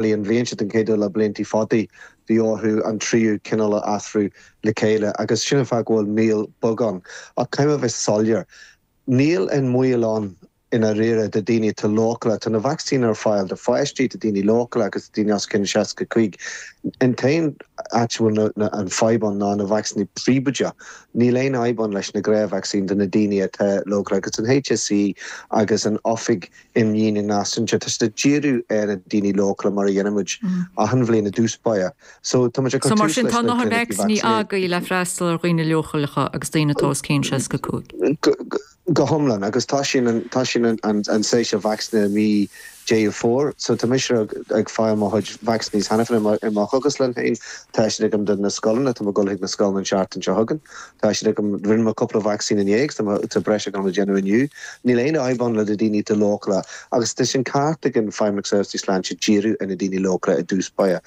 Bhí an bhliain seo den chéad uair le blianta fada, bhí orthu an tríú cineál a athrú le chéile, agus sin an fáth go bhfuil moill bheag ann. Ach caithfidh mé a bheith soiléir, níl aon mhoill ann i ndáiríre do dhaoine atá leochaileach. Tá na vacsaíní ar fáil do pháistí, do dhaoine leochaileacha agus do dhaoine os cionn 65. An t-aon áit a bhfuil an fadhb ann ná na vacsaíní príobháideacha. Níl aon fhadhb ann leis na gnáthvacsaíní do na daoine atá leochaileach, agus an HSE agus an Oifig Imdhíonta Náisiúnta. Tá siad ag díriú ar na daoine leochaileacha mar a dhéanaimid achan bhliain i dtús báire. So tá muid ag cur tús leis na clinicí vacsaíne. le freastal ar dhaoine leochaileacha agus daoine atá os cionn 65. Go hiomlán, agus tá sin tá sin an séasúr vacsaíne i mí Dheireadh Fómhair. So tá mise ag fáil mo chuid vacsaíní cheana féin i mo chógaslann féin. Tá siad agam do na scoileanna, tá muid ag dul chuig na scoileanna an tseachtain seo chugainn. Tá siad agam. Rinne mé cúpla vacsaín inné agus tá breis agam le déanamh inniu. Níl aon fhadhb ann le do daoine atá leochaileach agus tá sin ceart ag an Feidhmeannacht Seirbhísí Sláinte díriú ar na daoine leochaileach i dtús báire.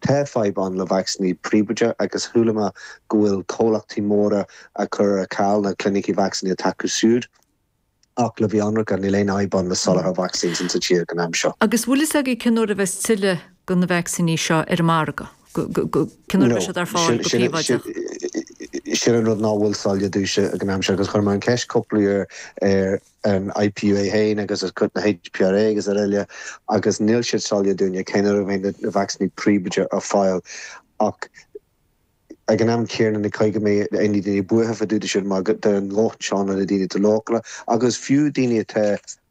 Tá fadhb ann le vacsaíní príobháideacha agus chuala mé go bhfuil comhlachtaí móra ag cur ar ceal na clinicí vacsaíne atá acu siúd. Ach le bheith ionraice, níl aon fhadhb ann le soláthar vacsaín insa tír ag an am seo. Agus bhfuil a fhios agaibh cén uair a bheas tuilleadh de na vacsaíní seo ar an margadh? Cén uair a bheas siad ar fáil go príobháideach? No, sin an rud ná bhfuil soiléir domhsa ag an am seo agus chuir mé an cheist cúpla uair ar an IPU féin agus ar chuid na HPRA agus aroile agus níl siad soiléir dúinne cén uair a bheidh na vacsaíní príobháideacha ar fáil ach Ag an am céanna ní gá go mbeadh na daoine buartha fá dtaobh de sin mar tá a ndóthain ansin do na daoine atá leochaileach agus fiú daoine atá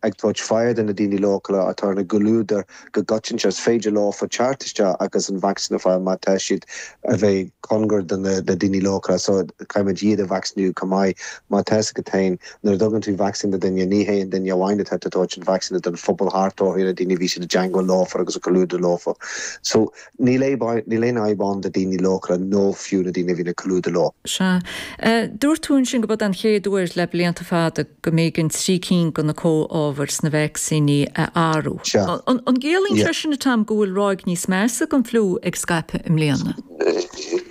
ag tabhairt aire do na daoine leochaileacha atá ina gcomhluadar go coitianta is féidir leofa teacht isteach agus an vacsaín a fáil má tá siad a bheith cóngar do na daoine leochaileacha so caithfimid iad a vacsaíniú chomh maith mar tá's agat féin nuair a dtugann tú vacsaín do duine ní hé an duine amháin atá tú a tabhairt an vacsaín a don phobal thart orthu na daoine a bhíonn siad i dteagmháil leofa agus i gcomhluadar leofa so Níl aon fhadhb ann do daoine leochaileacha nó fiú na daoine a bhíonn i gcomhluadar leo. Sea. Dúirt tú ansin gurb é an chéad uair le blianta fada go mb'éigean trí cinn de na comhábhair sna vacsaíní a athrú. Sea. An gciallaíonn sé sin, a Tom, go bhfuil ráig níos measa den fliú ag scaipeadh i mbliana?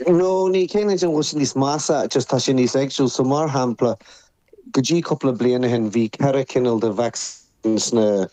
No, ní chiallaíonn sé an bhfuil sé níos measa, just tá sé níos éagsúil. So, mar shampla, go dtí cúpla bliain ó shin, bhí ceithre chineál de vacsaín sna.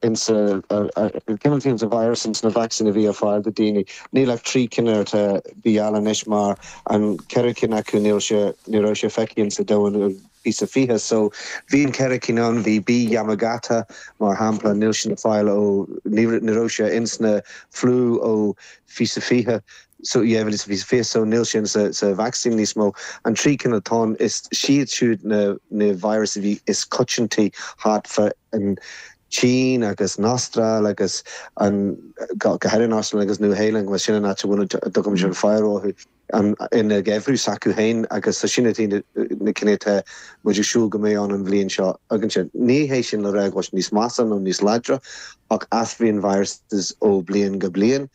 ins na cineáltaí ins na virus ins na vacsaín a bhí ar fáil do daoine. Níl ach trí cinn atá ar fáil anois mar an ceathrú ceann acu níl sé ní raibh sé feicthe ins a domhain ó fiche is a fiche so bhí an ceathrú ceann ann bhí B Yamagata mar shampla níl sin ar fáil ó ní ní raibh sé ins na flu ó fiche is a fiche so dhá mhíle is a fiche so níl sin insa vacsaín níos mó an trí cinn atá ann is iad siúd na na virus a bhí is coitianta thart fá an tSín agus an Astráil agus an, go háirithe an Astráil agus Nua-Shéalainn, bhuel sin an áit a bhfuil, muid ag déanamh faire orthu, an, ina ngeimhreadh s'acu féin agus so sin iad na, na cinn atá muid ag súil go mbeidh ann an bhliain seo againn seo. Ní hé sin le rá go bhfuil siad níos measa nó níos láidre ach athraíonn viruses ó bhliain go bliain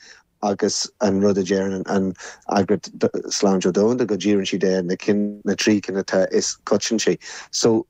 agus an rud a deireann an, an Eagraíocht Sláinte Domhanda go ndíríonn siad ar na cinn, na trí cinn atá is coitianta. So.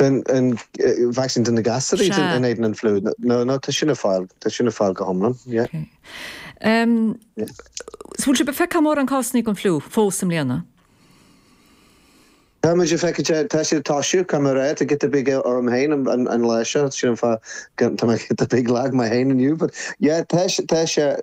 den vacsaín do na gasúraí in éadan an fliú. No, no, tá sin ar fáil, tá sin ar fáil go hiomlán, yeah. Ok. Ehm, so bhfuil sibh ag feiceáil mórán cásannaí den fliú fós i mbliana? Tá muid ag feiceáil, tá sé ag toisiú, cá mór é, tá giota beag orm féin an lá seo, sin an fáth go, tá mé giota beag lag mé féin inniu, but yeah, tá, tá sé,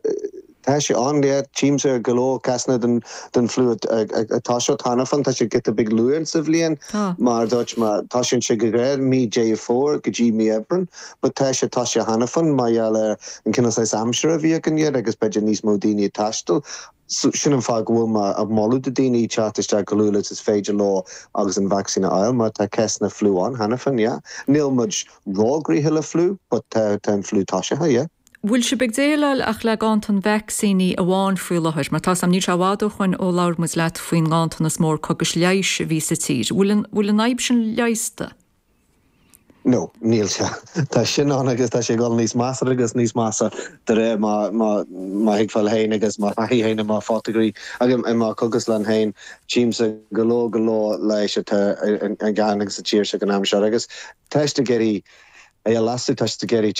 Tá sé ann, yeah. Tchímse go leor cásanna den fliú atá thart cheana féin. Tá sé giota beag luath sa bhliain, mar a dúirt mé, tosaíonn sé go géar mí Dheireadh Fómhair go dtí mí Aibreáin. But tá sé, tá sé cheana féin mar gheall ar an cineál saghas aimsire a bhí againn agus b'fhéidir níos mó daoine ag taisteal. So, sin an fáth go bhfuil mé ag moladh do dhaoine teacht isteach chomh luath is féidir leo agus an vacsaín a fháil, mar tá cásanna fliú ann cheana féin, yeah. Níl muid róghnoitheach le fliú, but tá an fliú toisithe, yeah. bhfuil sibh ag déileáil ach le ganntan vacsaíní amháin faoi láthair? Mar tá's agam, níl sé i bhfad ó shoin ó labhair muid leat faoin nganntanas mór cógas leighis a bhí sa tír. Bhfuil an, bhfuil an fhadhb sin leigheasta? No, níl sé. Tá sin ann agus tá sé ag dul níos measa agus níos measa de réir mo, mo, mo thuigbheáil féin agus mo thaithí féin i mo phoitigéir agus i mo chógaslann féin. Tchímse go leor, go leor leighis atá ar, ar, ar an ganntan sa tír seo ag an am seo agus tá siad ag iarraidh, é a leasú, tá siad ag iarraidh,